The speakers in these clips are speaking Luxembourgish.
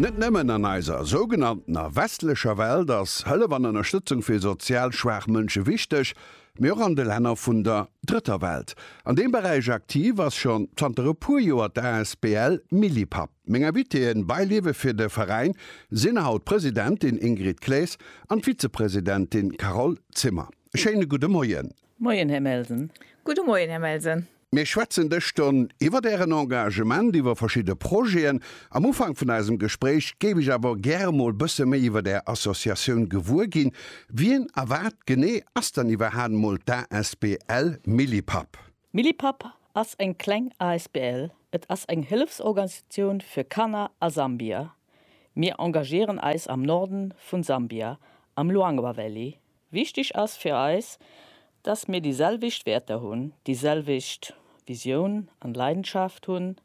Net nëmmen an eiser sougenanntener westlecher Welt ass Hëllef an Ënnerstëtzung fir sozial schwaach Mënsche wichteg, mee och an de Länner vun der Drëtter Welt. An deem Beräich aktiv ass schonn zanter e puer Joer d'ASBL Millipap. Meng Invitéeën, Beiliewe fir de Veräin, sinn haut d'Presidentin Ingrid Claes an d'Vizepresidentin Carole Zimmer. E schéine gudde Moien. Moien, Här Melsen. Gudde Moien, Här Melsen. Mir schwätzen dës Stonn iwwert Ären Engagement, iwwer verschidde Projeten. Am Ufank vun eisem Gespréich géif ech awer gäre mol bësse méi iwwert Är Associatioun gewuer ginn. Wien a wat genee ass dann iwwerhaen mol d'ASBL Millipap? Millipap ass eng kleng asbl. Et ass eng Hëllefsorganisatioun fir Kanner a Sambia. Mir engagieren eis am Norden vun Sambia am Luangwa Valley, Wichtig ass fir eis, dass mir déi selwecht Wäerter hunn, déi selwecht Visioun an Leidenschaft hunn,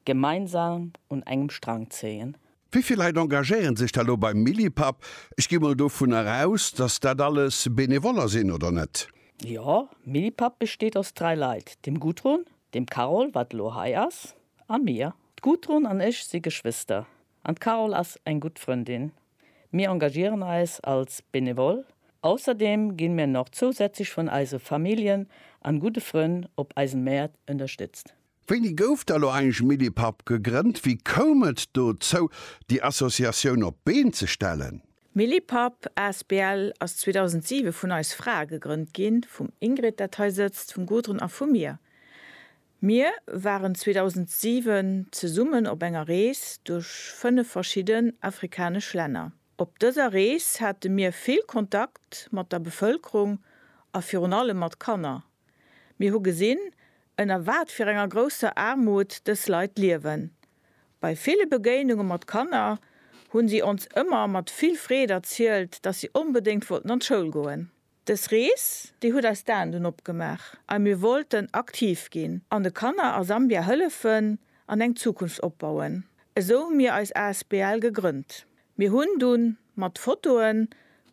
gemeinsam un engem Strang zéien. Wéi vill Leit engagéieren sech da lo beim Millipap? Ech gi mol dovunner aus, dass dat alles Benevoller sinn, oder net? Jo, Millipap besteet aus dräi Leit, dem Gudrun, dem Carole, wat elo hei ass, a mir. D'Gudrun an ech si Geschwister, An d'Carole ass eng gutt Frëndin. Mir engagieren eis als Benevole. Ausserdeem ginn mir nach zousätzlech vun eise Familljen an gudde Frënn op eisen Mäert ënnerstëtzt. Wéini gouf da lo eigentlech Millipap gegrënnt? Wéi koum et dozou déi Associatioun op d'Been ze stellen? Millipap asbl ass 2007 vun eis Frae gegrënnt ginn, vum Ingrid dat hei sëtzt, vum Gudrun a vu mir. Mir waren 2007 zesummen op enger Rees duerch 5 verschidden afrikanesch Länner. Op dëser Rees hate mir vill Kontakt mat der Bevëlkerung a virun allem mat Kanner. Mir hu gesinn, ënner wat fir enger grousser Aarmut dës Leit liewen. Bei ville Begéinunge mat Kanner hu si ons ëmmer mat vill Freed erzielt, dass si onbedéngt wollten an d'Schoul goen. Dës Rees, déi huet eis d'Aen dunn opgemaach a mir wollten aktiv ginn an de Kanner a Sambia hëllefen an eng Zukunft opbauen. Esou hu mir eis asbl gegrënnt. Mir hunn dunn mat Fotoen,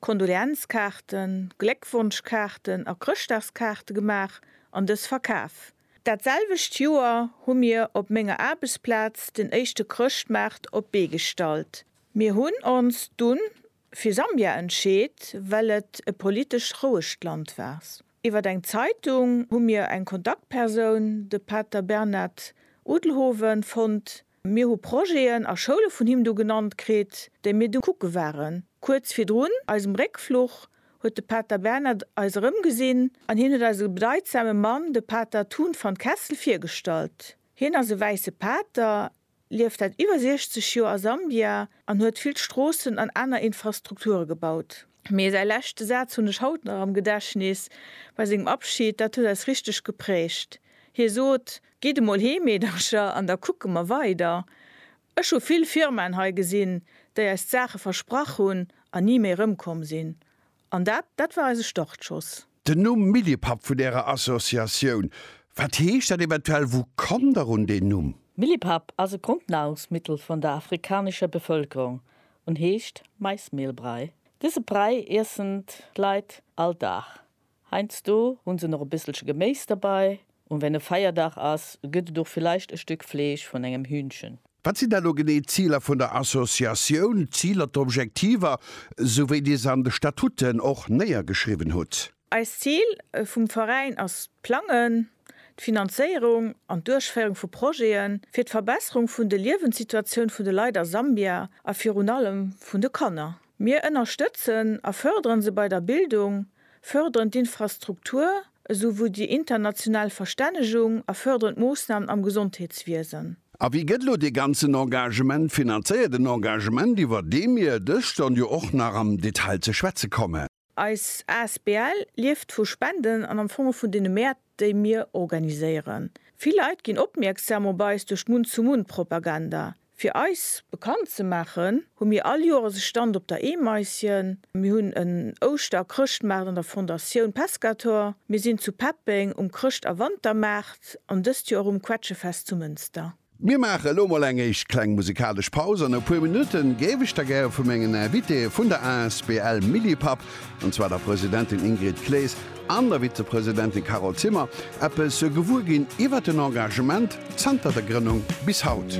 Kondoleenzkaarten, Gléckwonschkaarten a Chrëschtdagskaarte gemaach an dës verkaf. Dat selwecht Joer hu mir op menger Aarbechtsplaz den éischte Chrëschtmaart op d'Bee gestallt. Mir hunn ons dunn fir Sambia entscheet, well et e politesch rouegt Land wars. Iwwer eng Zeitung hu mir eng Kontaktpersoun, de Pater Bernard Udelhoven, fonnt. Mir hu Projeten a Schoule vun him do genannt kritt, déi mir du kucke waren. Kuerz virdrun eisem Réckfluch huet de Pater Bernard eis erëmgesinn an hien huet eis e bedeidsame Mann, de Pater Thun van Kessel, virgestallt. Hien ass e wäisse Pater, lieft säit iwwer 60 Joer a Sambia an huet vill Stroossen an aner Infrastrukture gebaut. Mee säi leschte Saz hunn ech haut nach am Gedächtnis, bei sengem Abschid, dat huet eis richteg geprägt. Hie sot, Gitt emol heem, Meedercher, an da kucke mer weider. Ech hu vill Firmaen hei gesinn, déi eis d'Saache versprach hunn an ni méi erëmkomm sinn. An dat, dat war eise Startschoss. Den Numm Millipapp vun Ärer Associatioun, wat heescht dat eventuell? Wou kommt Der un deen Numm? Millipapp ass e Grondnahrungsmittel vun der afrikanescher Bevëlkerung un heescht Maismehlbrei. Dëse Brei iessen d'Leit all Dag. Heiansdo hu se nach e bësselche Geméis derbei, Un wenn e Feierdag ass, gëtt et och villeicht e Stück Fleesch vun engem Hühnchen. Wat sinn dann elo genee d'Ziler vun der Associatioun, d'Ziler, d'Objektiver, sou wéi Dir se an de Statuten och néiergeschriwwen hutt? Eist Zil vum Veräin ass d'Plangen, d'Finanzéierung an d'Duerchféierung vu Projete fir d'Verbesserung vun de Liewenssituatioun vun de Leit a Sambia a virun allem vun de Kanner. Mir ënnerstëtzen a förderen se bei der Bildung, förderen d'Infrastruktur esou wou déi international Verstännegung a förderen d'Moossnamen am Gesondheetswiesen. A wéi gëtt elo dee ganzen Engagement finanzéiert, en Engagement iwwer dee mir dëscht dann jo och nach am Detail ze schwätze kommen? Eis Asbl lieft vu Spenden an am Fong och vun deene Mäert, déi mir organiséieren. Vill Leit ginn opmierksam op eis duerch d'Munn-zu-Munn-Propaganda. Fir eis bekannt ze maachen, hu mir all Joeres e Stand op der Eemaisjen, mir hunn en Ouschter a Chrëschtmaart an der Fondatioun Pescator, mir sinn zu Peppeng um Chrëscht a Wantermaart an dëst Joer och um Quetschefest zu Mënster. Mir maache elo mol eng éischt kleng musikalesch Paus. An e puer Minutte géif ech da gäre vu mengen Invitéë vun der asbl Millipap, an zwar der Presidentin Ingrid Claes an der Vizepresidentin Carole Zimmer, eppes gewuer ginn iwwert den Engagement zanter der Grënnung bis haut.